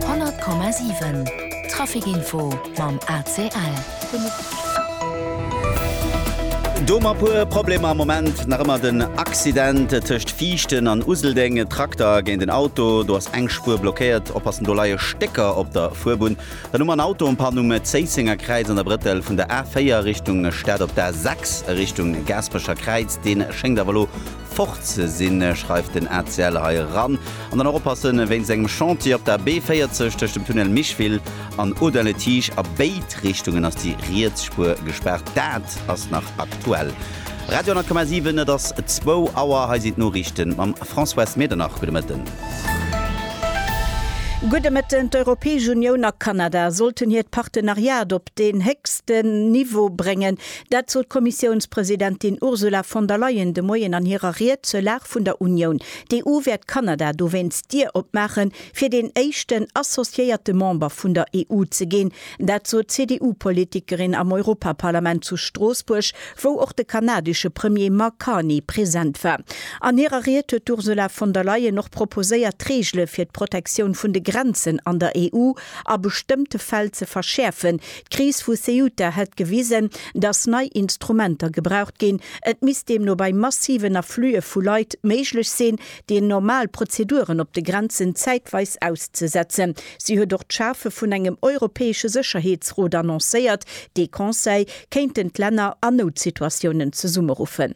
100,7 Trafikinfo mam ACL. Do mar puer Problemer am Moment nach ëmmer den Accident tëscht Viichten an Useldeng. E Trakter géint en Auto, do ass eng Spuer blockéiert. Oppassen, do leie Stécker op der Fuerbunn. Dann hu mer en Auto en Panne um Zéissenger Kräiz an der Brëttel vun der A4 Richtung Stad op d'A6 Richtung Gaasperecher Kräiz. Dee schéngt awer elo fort sinn, schreift den ACL hei eran. An dann och oppassen, wéinst engem Chantier op der B40 tëscht dem Tunnel Micheville an Audun-le-Tiche a béid Richtungen ass déi riets Spuer gespaart. Dat ass nach aktuell. Radio 10,7, et ass zwou Auer, hei sinn d'Noriichten mam Françoise Medernach. Gudde Mëtten. Gudde Mëtten. D'Europäesch Unioun a Kanada sollten hiert Partenariat op deen héchsten Niveau bréngen. Dat sot d'Kommissiounspresidentin Ursula von der Leyen de Moien an hirer Ried zur Lag vun der Unioun. D'EU wäert Kanada dowéinst d'Dier opmaachen, fir deen éischten associéierte Member vun der EU ze ginn. Dat sot d'CDU-Politikerin am Europaparlament zu Stroossbuerg, wou och de kanadesche Premier Mark Carney present war. An hirer Ried huet d'Ursula von der Leyen och proposéiert, Reegele fir d'Protektioun vun de Grenzen an der EU a bestëmmte Fäll ze verschäerfen, D'Kris vu Ceuta hätt gewisen, datt nei Instrumenter gebraucht ginn. Et misst deemno bei massiven Afflue vu Leit méiglech sinn, déi normal Prozeduren op de Grenzen zäitweis auszesetzen. Si huet och d'Schafe vun engem europäesche Sécherheetsrot annoncéiert. Dee Conseil kéinten d'Länner a Noutsituatiounen zesummeruffen.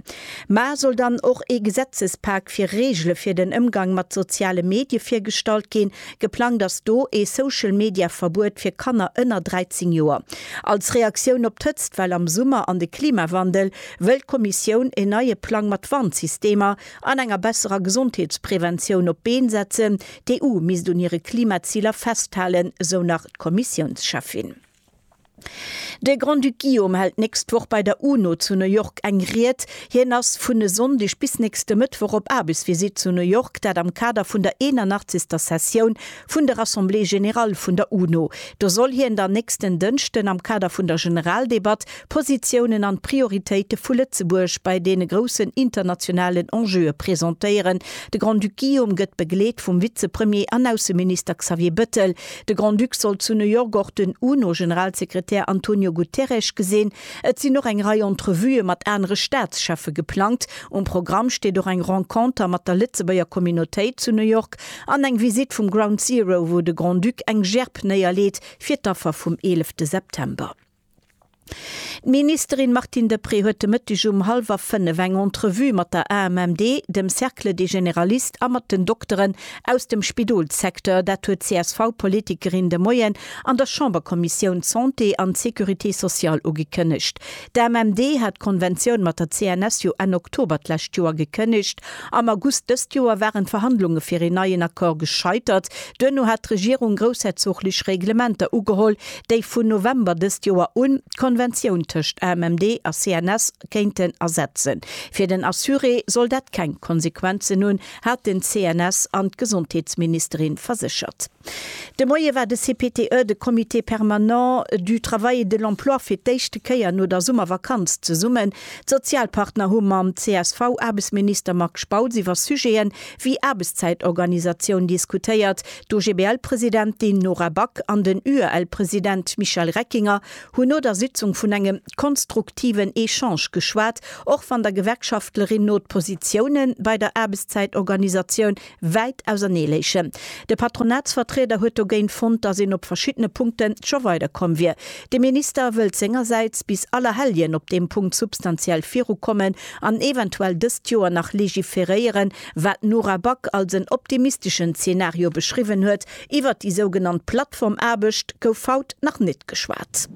Mä soll dann och ee Gesetzespak fir Reegele fir den Ëmgang mat soziale Medie virgestallt ginn? Geplangt ass do ee Social-Media-Verbuet fir Kanner ënner 13 Joer. Als Reaktioun op d'Hëtztwell am Summer an de Klimawandel wëll d'Kommissioun een neie Plang mat Warnsystemer an enger besserer Gesondheetspreventioun op d'Been setzen. D'EU misst un hire Klimaziler festhalen, sou nach d'Kommissiounscheffin. De Grand-Duc Guillaume hält nächst Woch bei der UNO zu New York eng Ried. Hien ass vun e Sonndeg bis nächste Mëttwoch op Aarbechtsvisitt zu New York, dat am Kader vun der 81. Sessioun vun der Assemblée générale vun der UNO. Do soll hien dann nächsten Dënschden am Kader vun der Generaldebatt d'Positiounen an d'Prioritéite vu Lëtzebuerg bei deene groussen internationalen Enjeue presentéieren. De Grand-Duc Guillaume gëtt begleet vum Vize-Premier an Ausseminister Xavier Bettel. De Grand-Duc sollt zu New York och den UNO-Generalsekretär Antonio Guterres gesinn. Et sinn och eng Rei Entrevuë mat anere Staatscheffe geplangt. Um Programm steet och eng Renconter mat der Lëtzebuerger Communautéit zu New York an eng Visitt vum Ground Zero, wou de Grand-Duc eng Gerb néierleet fir d'Affer vum 11 September. D'Ministerin Martine Deprez huet de Mëtteg um hallwer fënnef eng Entrevue mat der AMMD, dem Cercle des Généralistes a mat den Dokteren aus dem Spidolssecteur. Dat huet d'CSV-Politikerin de Moien an der Chamberkommissioun Santé an Sécurité sociale ugekënnegt. D'AMMD hat d'Konventioun mat der CNS jo Enn Oktober d'lescht Joer gekënnegt. Am August dëst Joer waren d'Verhandlunge fir een neien Accord gescheitert. Duerno hat d'Regierung groussherzoglich Reglementer ugeholl, déi vun November dëst Joer un d'Konventioun tëscht AMMD a CNS kéinten ersetzen. Fir den Assuré soll dat keng Konsequenzen hunn, hat den CNS an d'Gesondheetsministerin verséchert. De Moie war de CPTE, de Comité permanent du travail et de l'emploi, fir d'éischte Kéier no der Summervakanz zesummen. D'Sozialpartner hu mam CSV-Aarbechtsminister Marc Spautz iwwer Sujeten, Wéi Aarbechtszäitorganisatioun diskutéiert. D'OGBL-Presidentin Nora Back an den UEL-President Michel Reckinger hunn no der Sitzung vun engem konstruktiven Echange geschwat, och wann der Gewerkschaftlerin no d'Positioune bei der Aarbechtszäitorganisatioun wäit ausernee léichen. De Patronatsvertrieder huet dogéint fonnt, datt een op verschiddene Punkte scho weider komm wier. De Minister wëllt sengersäits bis Allerhelljen op deem Punkt substantiell virukommen, an eventuell dëst Joer nach legiferéieren, wat d'Nora Back als en optimisteschen Zeenario beschriwwen huet. Iwwert déi sougenannt Plattformaarbecht gouf haut nach net geschwat.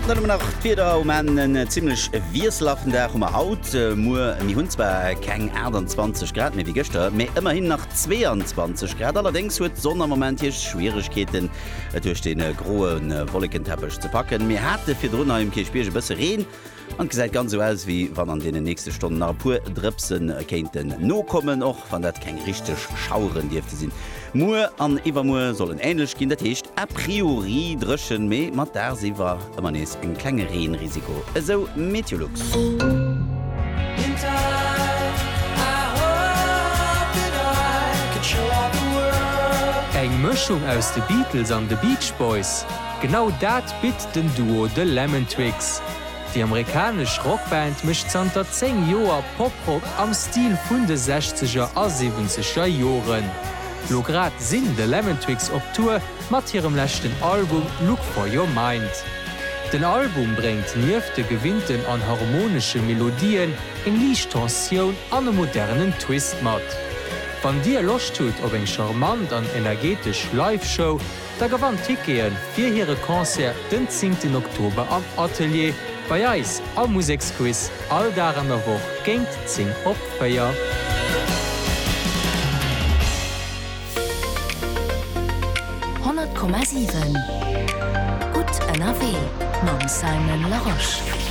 Dann hu mer nach d'Wieder, um Enn en zimmlech wiesselhaften Dag hu mer haut. Muer, mir hunn zwar keng 28 Grad méi wéi gëschter, mee ëmmerhin nach 22 Grad. Allerdéngs huet d'Sonn am Moment hir Schwieregkeeten. et duerch de groe Wollekenteppech ze packen. Mir hate virdrun hei um Kierchbierg e bësse Reen an et gesäit ganz esou aus, wéi wann an deenen nächste Stonnen nach e puer Drëpse kéinten nokommen, och wann dat keng richteg Schaueren dierfte sinn. Muer an iwwermuer soll en änlech ginn, dat heescht a priori dréchen, mee mat dagsiwwer. Ëmmer nees en klenge Reenrisiko, esou MeteoLux. Eng Mëschung aus de Beatles an de Beach Boys? Genau dat bitt den Duo The Lemon Twigs. Déi amerikanesch Rockband mécht zanter 10 Joer Poprock am Stil vun de Sechzeger a Siwwenzeger Joren. Lo grad sinn The Lemon Twigs op Tour. mat hirem leschten Album Look For Your Mind. Den Album bréngt nieft de gewinnten an harmonesche Melodien eng liicht Tensioun an e modernen Twist mat. Wann dir Loscht hutt op eng charmant an energetesch Live-Show, da gewannt Tickete fir hire Concert den zéngten Oktober am Atelier bei eis am Museksquiz all Dag an der Woch géint 10 op 4. 100,7 gutt ënnerwee mam Simon Larosche.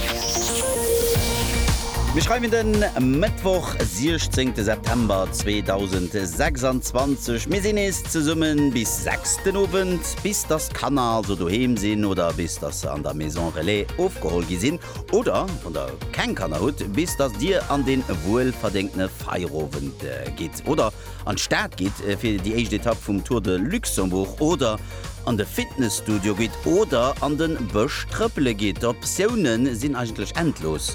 Mir schreiwen de Mëttwoch 16 September 2026. Mir sinn nees zesummen bis 6 den Owend, bis dass d'Kanner also doheem sinn oder bis dass se an der Maison Relais ofgeholl gi sinn oder, wann der keng Kanner hutt, bis dass dir an dee wuelverdéngtene Feierowend gitt oder An d'Stad gitt fir déi éischt Etapp vum Tour de Luxembourg oder an de Fitnesstudio gitt oder an de Bësch trëppele gitt, d'Optioune sinn eigentlech endlos,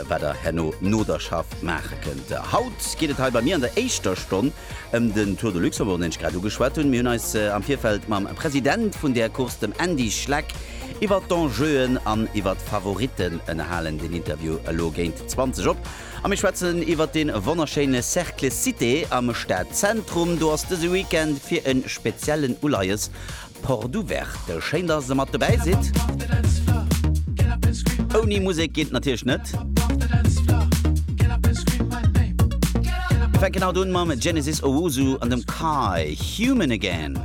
wat der herno no der Schaff maache kënnt. Haut geet et hei bei mir an der éischter Stonn ëm den Tour de Luxembourg, deen ech grad ugeschwat hunn. Mir hunn eis am Virfeld mam President vun där Course, dem Andy Schleck, iwwer d'Enjeuen an iwwer d'Favoritten ënnerhalen. Deen Interview elo géint 20 op A mir schwätzen iwwert dee wonnerschéine Cercle Cité am Stadzentrum. Do ass dëse Weekend fir e speziellen Uleies Porte Ouverte. Schéin, dass Der mat dobäi sidd. Ouni Musek geet et natierlech net. Mir fänken haut un mam Genesis Owusu an dem Kai, Human Again.